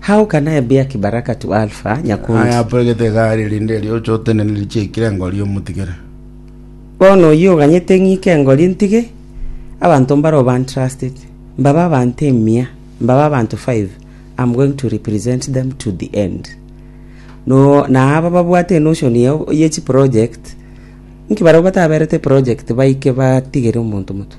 How can I be a kibaraka to Alpha, Nyakundi? Aye apoegete egari erinde erio oche otenene richie aikire engori omotigere. Bono oyio oganyete ng'ike engori ntige, abanto mbaroo bantrusted, mbabe abanto emia, mbabe abanto five, I'm going to represent them to the end. No, na aba babwate enotion ye, ye chiproject, nki barabwo bataberete project baike batigere omonto motwe?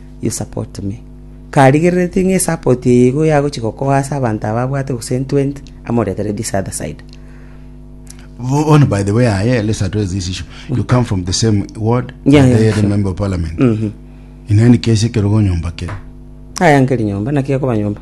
ye sapoti me, karigereretie ng'a esapoti eye igo yagochia gokoa ase abanto aba abwate gose entwenti, amoretere this other side. Oh, on by the way aye let's address this issue you come from the same ward Yeah, and yeah, they sure. the member of parliament Mhm. in any case ekerogo nyomba kere Aya nkeri nyomba, naki ekoba nyomba.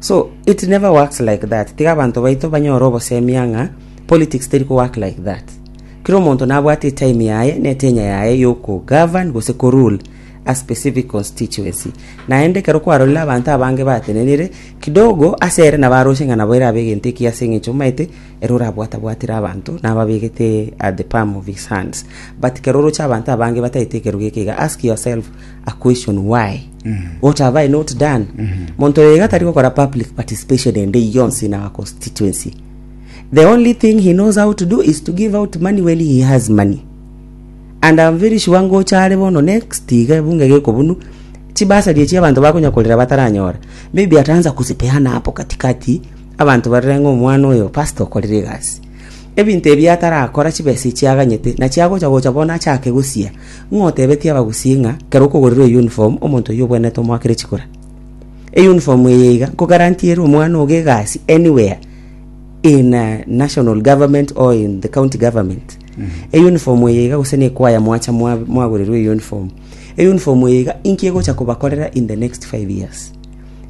So it never works like that. Tiga abantu baito banyore obosemia ng'a politics teri ko work like that. Kira omonto nabwate etime yaye ne etenya yaye yoko govern gose ko rule a specific constituency. Naende ekero kwarorire abantu abange batenenire kidogo ase ere nabaroshe ng'a nabo erabe egento eki ase eng'encho maete ere orabwatabwatire abantu nababegete at the palm of his hands. But kero oroche abantu abange bataete ekerogo eke iga ask yourself a question why what have i not done monto oyo iga tari gokora public participation ende eye yonsi in our constituency the only thing he knows how to do is to give out money when he has money and I'm very sure ngocha are bono next iga ebunge gekobunu chibasari echi abanto bakonya korera bataranyora maybe ataanza kuzipeana hapo katikati abanto barore ng'a omwana oyo pastor okorire egasi ebinto ebi atarakora chibesa echi aganyete nachi agocha gocha bono achake gosia Ng'a otebetie abagusii ng'a kera okogorirwa eyunifomu, omonto oyio obwenerete omoakere chikura. Eyunifomu eye iga nkogarantiere omwana ogo egasi anywhere in a national government or in the county government. Eyunifomu eye iga gose nekwaya mwacha mwa- mwagorirwa eyunifomu. Eyunifomu eye iga inki egocha kobakorera in the next five years.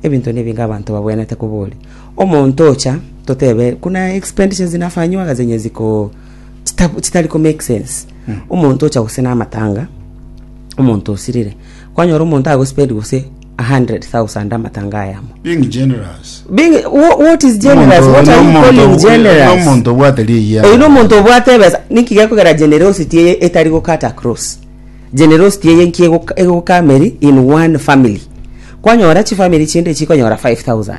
Ebinto na ebinge abanto babwenerete koboria. Omonto ocha totebe buna expenditures nafanywaga zenye ziko chita- chitari ko make sense omonto ocha gose namatanga omonto osirire kwanyora omonto agospend gose 100000 amatanga aya amo being generous Being, wha- what is generous Omonto- what are you nomonto- calling generous nomonto obwate riya oyu nomonto obwate ebesa niki gekogera generosity eye etari gokata cross generosity eye nki egoka- egokameri in one family kwanyora chifamiri chinde chikonyora 5000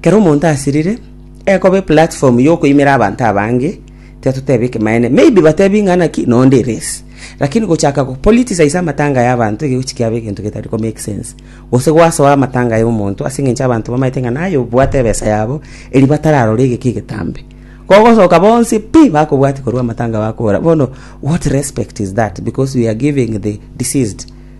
Kero omonto asirire, ekoba eplatform yokoimera abanto abange, tiatotebe ekemanene. Maybe batebi ng'a naki nonde eresi. Lakini gochaka go politicize amatanga ya abanto egegochi kiaba egento getari ko make sense. Gose gwasoa amatanga ya omonto ase eng'encho abanto bamaete ng'a naye obwate ebesa yabo eri batararora egeki egetambe. Kogosoka bonsi pi bakobwatia korwa amatanga bakobora bono what respect is that because we are giving the deceased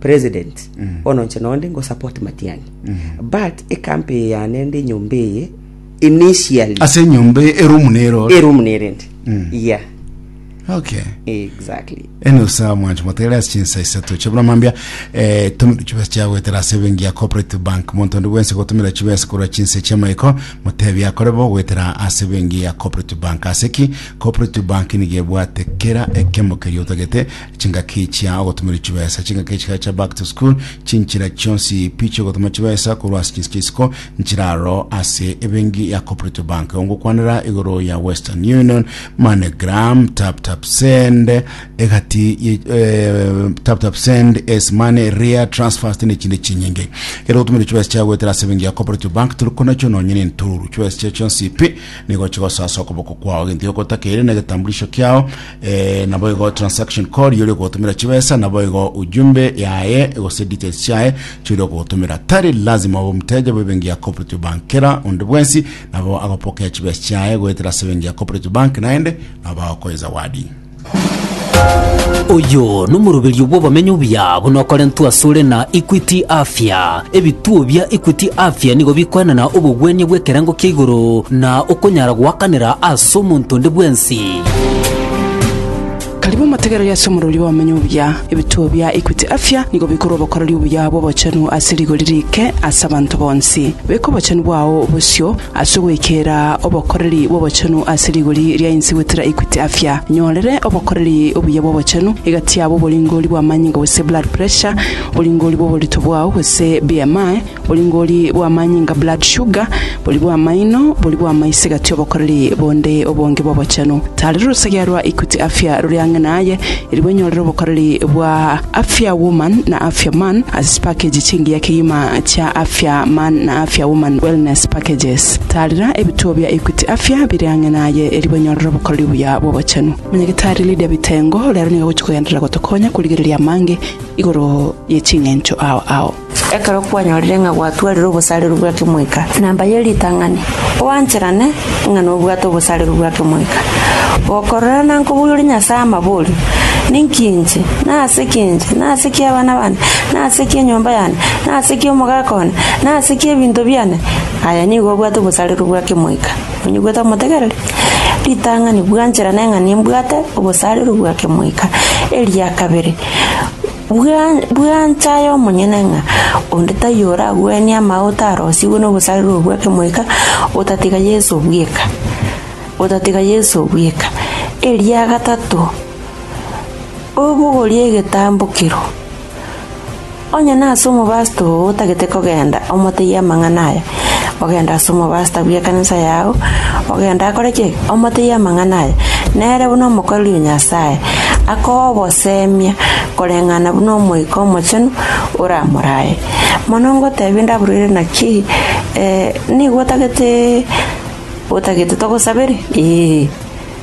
President, bono inche nonde ngo support Matiang'i. But ekampe eye yane ende enyomba eye initially ase enyomba eye, erumu nero ore. eroom nerende. Yeah, okay exactly. ene osa mwancho motere ase chinsa isato chia buna mambia eh, tumira chibesa chia goetera ase ebenki ya cooperative bank monto onde bwense gotumira chibesa korwa chinse chia maiko motebi akore bo goetera ase ebenki ya cooperative bank ase ki cooperative bank nigo ebwate kera ekemo keria otagete chingaki chia ogotomerwa chibesa, chingaki chiga chia back to school, chinchera chionsi pi chiogotoma chibesa korwa ase chinse chi'isiko nchiraro ase ebengi ya Cooperative Bank. Ongokwanera igoro ya Western Union, MoneyGram, TapTapSend, egati ye- eh, TapTapSend, Ace Money, Ria, Transfast ne chinde chinyinge. Kero ogotomerwa chibesa chia goetera ase ebengi ya Cooperative Bank toriko nacho nonye ne ntoru. Chibesa chia chionsi pi nigo chigosoa ase okoboko kwao. Egento giokotakeire na egetambulisho kiao Eh, naboigo transaction code yori ogotumira chibesa naboigo ujumbe yaye gose details chiaye chori ogotumira tari lazima obe omuteja bwebengi ya cooperative bank kera onde bwensi nabo agopokea chibesa chiaye goetera ase ebengi ya cooperative bank naende nabo bagokoe zawadi oyo n'omoruberio bw'obomenyo obuya buna okorentwa asore na equity afya ebituo bia equity afya nigo bikoenana obogwenia bw'ekerengo kia igoro na okonyara goakanera ase omonto onde bwensi Karibu omotegereri ase omorori bw'obomenyo obuya. Ebituo bia Equity Afya nigo bikore obokoreri obuya bw'obochenu ase rigori riike ase abanto bonsi. Beka obochenu bwao bosio ase ogoikera obokoreri bw'obochenu ase rigori ria inse goetera Equity Afya. Nyorere obokoreri obuya bw'obochenu egati yabo oboringori bw'amanyinga gose blood pressure, oboringori bw'oborito bwao gose BMI, Boringori bw'amanyinga, blood sugar, bori bw'amaino, bori bw'amaiso egati obokoreri bonde obonge bw'obochenu. Tari rorosegea rwa Equity Afya rore ang'e naye, eri bwenyorere obokoreri bwa Afya Woman na Afya Man ase chipakeji chingiya kegima chia Afya Man na Afya Woman Wellness Packages. Taarera ebituo bia Equity Afya bire ang'e naye eri bwenyorere obokoreri obuya bw'obochenu. Monyagitari Lydia Bitengo rero nigo agochia kogenderera gotokonya korigereria amange igoro ye ching'encho ao ao. Ekero kwanyorire ng'a gwatwarire obosareru bwa kemoika namba ye ritang'ani, oancherane ng'a nobwate obosareru bwa kemoika, gokorora na nkoboiyoria Nyasae amaborio, Ninki inche? na Ase ki inche? na Ase ki abana bane? na Ase ki enyomba yane? na Ase ki omogaka one? na Ase ki ebinto biane? Aye nigo obwate obosareru bwa kemoika. Onye gwetamotegereri ritang'ani, bwancherane ng'a nimbwate obosareru bwa kemoika. Eria kabere. Bua, bua nse aye omonyene ng'a onde taiyo oragwenie amagote arosigwe nogosarirwa gwa Kemoika, otatiga Yeso bweka, otatiga Yeso bweka. Eria gatato, obogorie egetambokero, onye nase omobasto oo otagete kogenda, omotebie amang'ana aya, ogenda ase omobasta bw'ekanisa yao, ogenda akore ki? Omotebie amang'ana aya, nere buna omokoreri o Nyasae, akoe obosemia koreng'ana buna Omoika Omochenu oramorae. Mono ngotebie ndabororire naki, ee, nigo otagete otagete togosabere? Ee.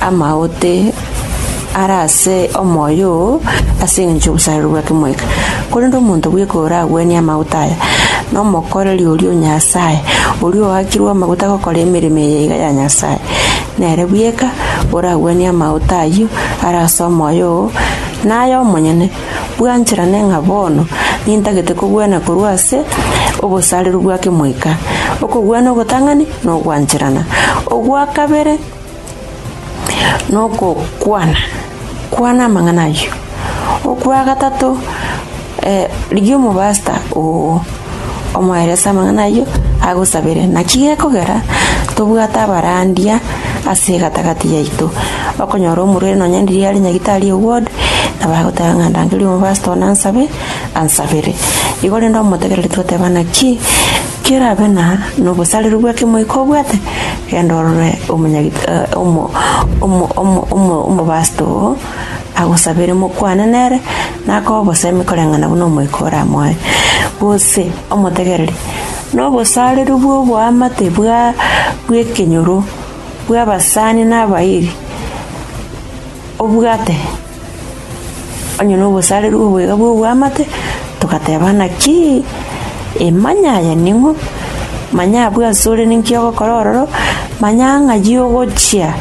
amaote are ase omoyo oo ase engencho y'obosareri bwa kemoika. Korende omonto bweka oragwenie amaote aya, nomokoreri oria o Nyasae, oria oakirwe amaguta gokora emeremo eye iga ya Nyasae. Nere bweka oragwenie amaote ayio are ase omoyo oo, naye omonyene, bwancherane ng'a bono nintagete kogwena korwa ase obosareri bwa kemoika. Okogwena ogotang'ani nogwancherana. Ogwa kabere. nokokwana kwana amang'ana ayio. Okwa gatato eh rigia omobasta oo omoerese amang'ana ayio agosabere. Naki gekogera tobwate abarandia ase egatagati yaito, okonyora omorwaire nonya riria are nyagetari o ward nabo agoteba ng'a rangeria omobasta one ansabe, ansabere. Igo rende omotegereri toteba naki. Kerabe na nobosareru bw'ekemoika obwate, genda orore omobaasta oo, agosabere mokwane nere, nakoe obosemi koreng'ana buna omoika oramoe. Gose omotegererie nobosareru bw'oboamate bw'ekenyoro bw'abasani na abairi obwate. Onye nobosareru obwega bw'oboamate, togateba, Naki emanya aya ning'o? Manya abwo ase ore ninki ogokora ororo, manya ng'ai ogochia.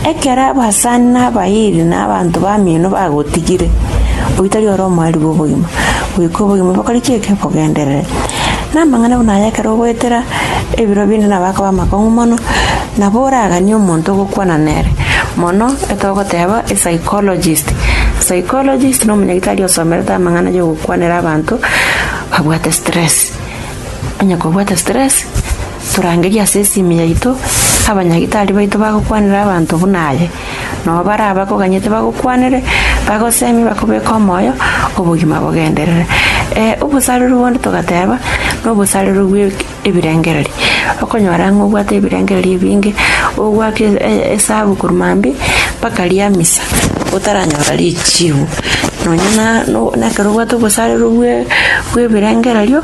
Ekero abasani na abairi na abanto b'amino bagotigire, oyio tari ore omoerio bw'obogima, goika obogima bokore ki? Bogenderere. Namang'ana buna aya ekero ogoetera ebiro binde nabo akaba amakong'u mono. Nabo oraganie omonto ogokwana nere mono etogoteba epsychologist. Psychologist na omonyagitari osomerete amang'ana ay'ogokwanera abanto babwate stress. Onye kobwate stress torangerie ase esimi yaito abanyagitari baito bagokwanera abanto buna aye. Nabo baria abakoganyete bagokwanere bagosemie bakobeke omoyo obogima bogenderere. Obosareru bonde togateba na obosareru bwe ebirengererio, okonyora ng'a obwate ebirengererio ebinge, ogoaka e- e- esabu korwa mambia mpaka ria misa otaranyora richibu. Nonya na no na ekero obwate obosarero bwe bw'ebirengererio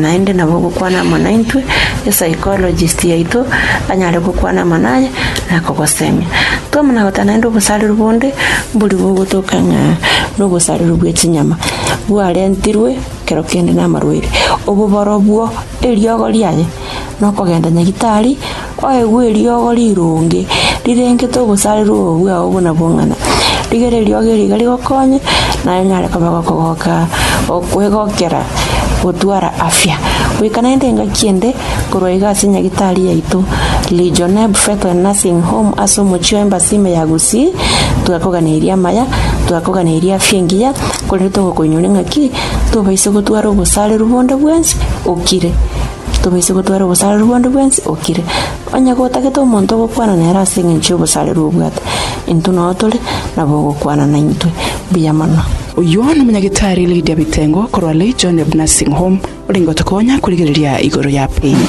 naende nabo ogokwana amo naintwe, epsychologist yaito anyare gokwana amo naye na kogosemia. Twamana goteba naende obosarero bonde, mbori bogotoka ng'a na obosarero bwe chinyama bwarentirwe. kero kende namarwaire, oboboro bwo eriogo riaye nokogenda nyagitari, oegwe eriogo rironge rirengete obosareru obo bwao buna bong'ina, rigere eriogo eri iga rigokonye naye onyare koba gokogoka okwegokera gotwara afya. Goika naende engaki ende korwa iga ase nyagitari yaito Legionnaire Buffet and Nursing Home ase omochie o Embassy ime ya Gusii, twakoganeirie amaya, twakoganeirie afya engiya. Korende togokoinyore ng'a ki, tobaise gotwara obosareru bonde bwensi okire, tobaise gotwara obosareru bonde bwensi okire. Onye gotagete omonto ogokwana nere ase engencho y'obosareru obwate, intwe nao tore nabo ogokwana naintwe. Mbuya mono. Oyio nomonyagitari Lydia Bitengo korwa Legion of Nursing Home. Ore ngocha konya korigereria igoro ya piny.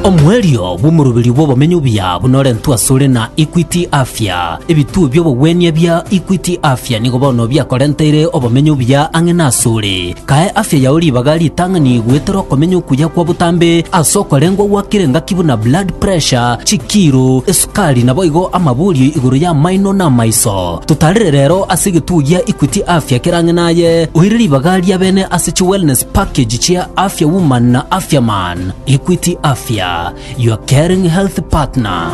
Omoerio bw'omoroberio bw'obomenyo obuya buna orentwe asore na Equity Afya. Ebituo bi'obogwenia ebia Equity Afya nigo bono biakorenteire obomenyo obuya ang'e nasore. Kae afya yao ribaga ritang'ani goetera okomenya okuya kwa botambe ase okorengwa gwa kera engaki buna blood pressure, chikiro, esukari naboigo amaborio igoro y'amaino na amaiso. Totarire rero ase egetugi gia Equity Afya ekerang'e naye oire ribaga ria bene ase chi wellness package chia Afya Woman na Afya Man. Equity Afya, your caring health partner.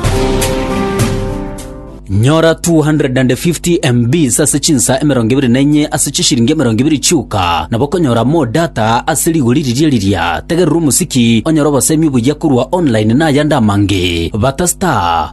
Nyora 250 MBs ase chinsa emerongo ebere na enye ase chishiringi emerongo ebere chioka, nabo okonyora more data ase rigori riria riria. Tegerera omosiki onyore obosemi obuya korwa online na ayande amange. Bata star.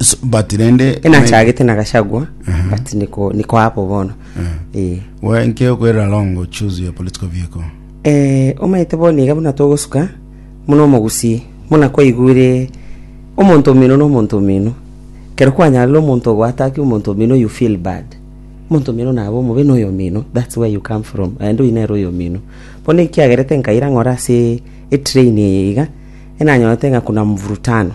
So, but rende enachagete na gachagua but niko niko hapo bono eh we nke okwera longo choose your political vehicle eh omaete bono iga buna togosuka muna omogusi muna kwaigure omonto omino na omonto omino kero kwanyarire omonto ogwataki omonto omino you feel bad omonto omino nabe omobe na oyomino that's where you come from aende oyio nere oyomino bono ekiagerete nkaira ng'ora ase etrain eye iga enanyorete ng'a kuna mvurutano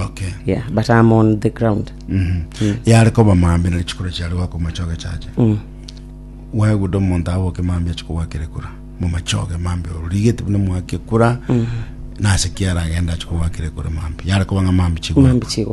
Okay. yeah but i'm on the ground Mhm. yare koba maambia nari chikura chiare gwakwa machoge chacha mm. wegude omonto aboke maambia achi kogwakera ekura momachoge maambia origete buna mwake ekura nase kiara agenda achi kogwakera ekura maambia yare koba ng'a maambia chigwa mambi chigwa